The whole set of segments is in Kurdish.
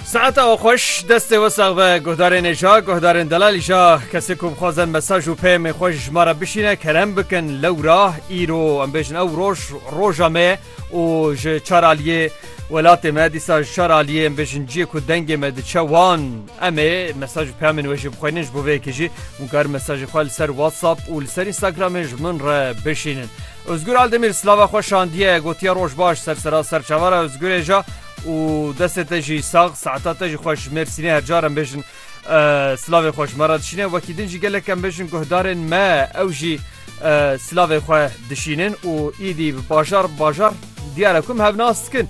Saeta we xweş, destê we sax be, guhdarên êja, guhdarên delal îja, kesê ku bixwazin mesaj û peyamên xwe ji ma re bişîne kerem bikin lewra, îro, em bêjin ew roj, roja me ye û ji çar aliyê welatê me, dîsa ji çar aliyê em bêjin ciyê ku dengê me diçe wan em ê mesaj û peyamên we jî bixwînin, ji bo vê yekê jî hûn karin mesajê xwe li ser WhatsApp û li ser Instagramê ji min re bişînin. Ozgur Aldemîr silava xwe şandiye, gotiye roj baş ser seraser çavara Ozgurê ja û destê te jî sax, saeta te jî xweş ji Mêrsînê her car em bêjin silavê xwe ji me re dişîne, wekî din jî gelek em bêjin guhdarên me ew jî silavê xwe dişînin û îdî bi bajar bajar diyare ku em hev nas dikin.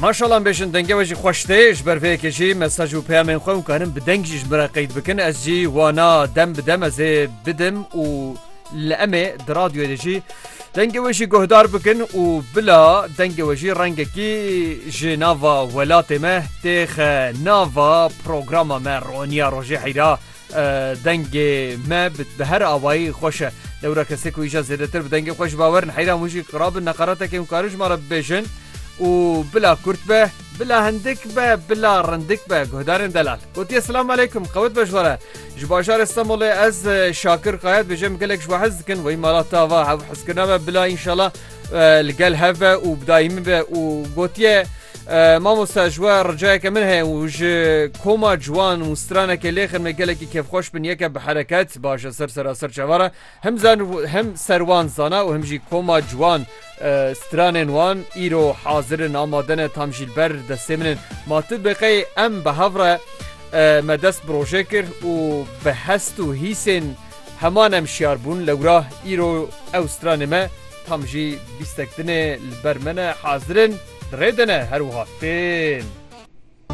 Maşalan bêjin denge we jî xweş tê ji ber vê yekê jî mesaj û peyamên xwe û karin bi deng jî ji min re qeyd bikin ez jî wana dem bi dem ez ê bidim û li emê di radyoyê de jî Dengê wê jî guhdar bikin û bila dengê wê jî rengekî ji nava welatê me têxe nava programa me roniya rojê heyra dengê me bi her awayî xweş e dewra kesê ku îja zêdetir bi dengê xweş bawerin heyra hûn jî qirabin neqaretekê hûn karin ji me re bibêjin û bila kurt be Bila hindik be bila rindik be guhdarên delal. Gotiye Silam aleykum qewit be ji we re. Ji bajarê Stenbolê ez Şakir Kaya dibêje em gelek ji we hez dikin weyî mala te ava hev hezkirina me bila înşala li gel hev be û bi dayî min be û gotiye mamosta ji we ricayeke min heye û ji koma ciwan û stranekê lêxin me gelekî kêfxweş bin yeke bi hereket baş e ser seraser çavara Him zan û him ser wan zana û him jî koma ciwan stranên wan îro hazir in, amade ne, tam jî li ber destê min in. Ma tu biqey em bi hev re me dest bi rojê kir û bi hest û hîsên heman em şiyar bûn. Lewra îro ew stranê me tam jî bîstek din ê li ber me ne, hazir in, di rê de ne, her wiha tên.